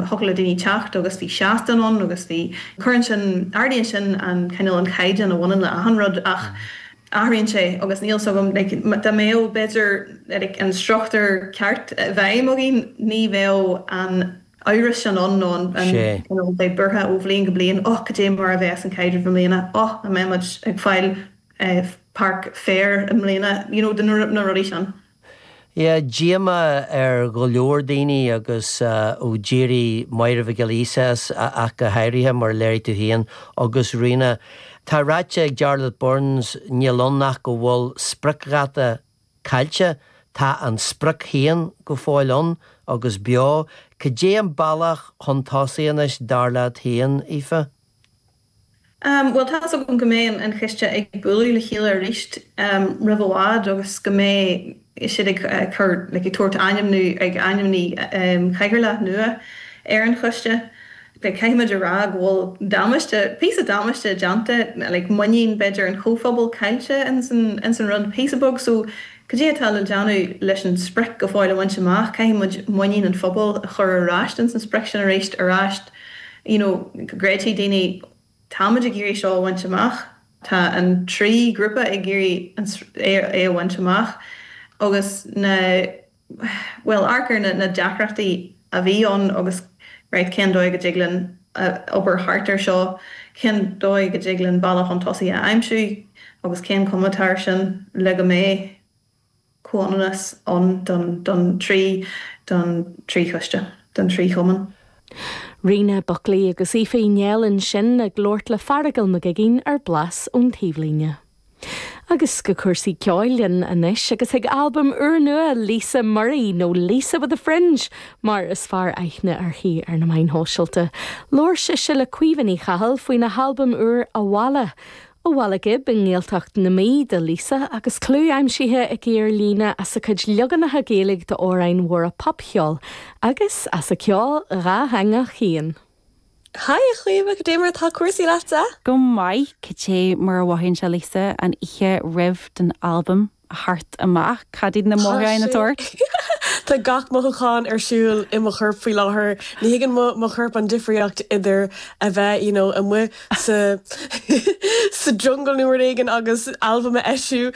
Thiocfadh le daoine teacht agus bhí seastán ann agus, you know, cuireann sin, ardaíonn sin an cineál, an caighdeán a bhaineann le achan rud ach athraíonn sé agus níl 'fhios agam, like, dá mbeadh, b'fhéidir, like, an struchtúr ceart i bhfeidhm againn ní bheadh an t-amhras sin ann nó an, an, you know, bheith buartha ó bhliain go bliain, oh, cad é mar a bheas an caidreamh i mbliana, oh, an mbeimid ag fáil, eh, páirc féir i mbliana, you know, na rudaí sin. Bhí díomá ar go leor daoine agus ó d'éirigh Máire Mhic Giolla Íosa as go háirithe mar a léirigh tú féin agus Rena. Tá ráite ag Jarlath Burns níl ann ach go bhfuil spriocdháta caillte, tá an sprioc féin go fóill ann agus beo. Cad é an bealach chun tosaigh anois dar leat féin, Aoife? Umm, bhuel tá's agam go mbeidh an choiste ag bualadh le chéile arís roimh i bhfad agus go mbeidh siad ag cur, like, ag tabhairt ainmniú, ag ainmniú Cathaoirleach nua ar an Choiste. Like, caithfimid a rá go bhfuil damáiste, píosa damáiste déanta, like, muinín, b'fhéidir, an phobail caillte ins an, ins an rud píosa beag. So, cad é atá le déanamh leis an sprioc go fóill a bhaint amach, caithfimid muinín an phobail a chur ar ais ins an sprioc sin arís, arís. you know go gcreidfidh daoine táimid ag iarraidh seo a bhaint amach, tá an trí ghrúpa ag iarraidh é a bhaint amach agus na bhuel amharc ar na na deacrachtaí a bhí ann agus right cén dóigh a dtig linn obair thart ar seo, cén dóigh a dtig linn bealach chun tosaigh a aimsiú agus cén cuma atá ar sin le go mbeidh. comhionannas ann don don trí don trí choiste, don trí chumann. Rena Buckley agus Aoife Nic Niallais ansin ag labhairt le Fearghal Mag Uiginn ar Blas ón Taobhlíne. Agus go cúrsaí ceoil linn anois agus chuig albam úrnua Lisa Murray, nó Lisa with a Fringe mar is fearr aithne uirthi ar na meáin shóisialta. Labhair sise le Caoimhe Ní Chathail faoina halbam úr Abhaile Ó Bhaile Ghib i nGaeltacht na Mí do Lisa agus clú aimsithe aici ar líne as a cuid leaganacha Gaeilge d'amhráin mhóra popcheoil agus as a ceol dátheangach féin. Haigh a Chaoimhe, cad é mar atá cúrsaí leatsa? Go maith, cad é mar a mhothaíonn sé Lisa an oíche roimh don albam? theacht amach cad iad na mothúcháin atá ort. Tá gach mothúchán ar siúl i mo chorp faoi láthair. Ní thuigeann mo chorp an difríocht idir a bheith you know amuigh sa jungle nó rud éigin agus albam a eisiú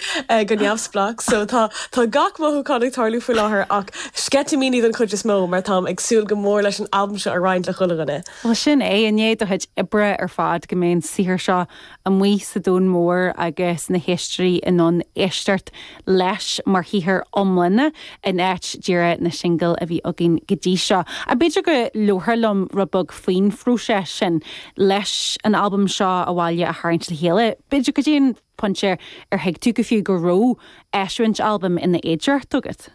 go neamhspleách. So tá tá gach mothúchán ag tarlú faoi láthair ach sceitimíní don chuid is mó mar táim ag súil go mór leis an albam seo a roinnt le chuile dhuine. Bhuel sin é, i ndiaidh do chuid oibre ar fad go mbeidh an saothar seo amuigh sa domhan mór agus na héisteoirí in ann éisteacht leis mar shaothar iomlán in áit díreadh na singil a bhí againn go dtí seo. Ach b'fhéidir go labhrófá liom rud beag faoin phróiseas sin leis an albam seo Abhaile a tharraingt le chéile, b'fhéidir go dtí an pointe ar thuig tú go fiú go raibh eisiúint albaim ina fhéidearthacht agat.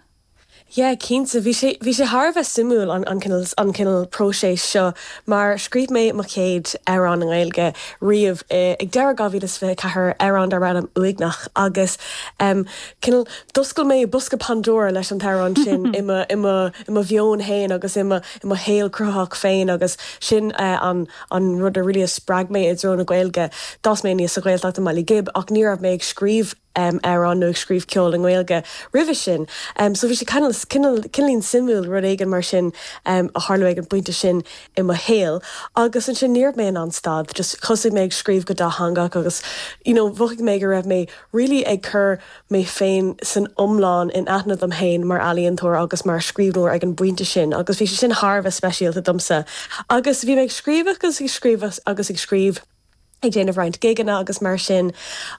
Yeah, cinnte. Bhí sé, bhí sé thar a bheith suimiúil an, an cineal, an cineal próiseas seo mar scríobh mé mo chéad amhrán i nGaeilge riamh i, ag deireadh 2024, amhrán darbh ainm Uaigneach agus em cineal d'oscail mé bosca Pandora leis an amhrán sin i mo, i mo, i mo mheon féin agus i mo, i mo shaol cruthaitheach féin agus sin eh an, an rud a really a spreag mé i dtreo na Gaeilge. D'fhás mé aníos sa Ghaeltacht i mBaile Ghib ach ní raibh mé ag scríobh. um, amhrán nó ag scríobh ceoil i nGaeilge roimhe sin. Um, so bhí sé cineál, cineál, cineáilín suimiúil, rud éigin mar sin um, a tharla ag an bpointe sin i mo shaol. Agus ansin ní raibh mé in ann stad, just thosaigh mé ag scríobh go dátheangach agus you know, mhothaigh mé go raibh mé really ag cur mé féin san iomlán in aithne dom féin mar ealaíontóir agus mar scríbhneoir ag an bpointe sin agus bhí sé sin thar a bheith speisialta domsa. Agus bhí mé ag scríobh agus ag scríobh agus ag scríobh ag déanamh roinnt gigeanna agus mar sin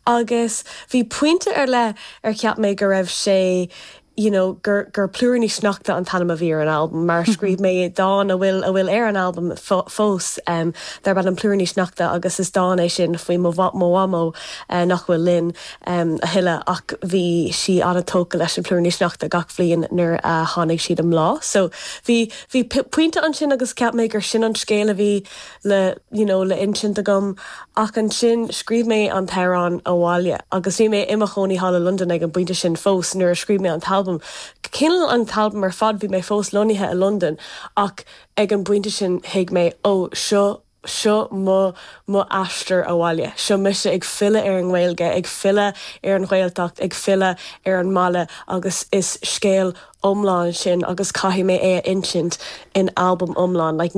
agus bhí pointe ar leith ar cheap mé go raibh sé you know gur gur Plúiríní Sneachta an t-ainm a bhí ar an albam mar scríobh mé dán a bhfuil, a bhfuil ar an albam fós em darb ainm Plúiríní Sneachta agus is dán é sin faoi mo mo mhamó eh nach bhfuil linn em a thuilleadh ach bhí sí an-tógtha leis na plúiríní sneachta gach bhliain nuair a tháinig siad i mbláth so bhí bhí pointe ansin agus cheap mé gur sin an scéal a bhí le, you know, le insint agam ach ansin scríobh mé an t-amhrán Abhaile agus bhí mé i mo chónaí thall i Londain ag an bpointe sin fós nuair a scríobh mé an t-albam. Cineál an t-albam ar fad bhí mé fós lonnaithe i Londain ach ag an bpointe sin thuig mé oh seo, seo mo, mo aistear abhaile, seo mise ag filleadh ar an nGaeilge, ag filleadh ar an Ghaeltacht, ag filleadh ar an mbaile agus is scéal iomlán sin agus caithfidh mé é a insint in albam iomlán like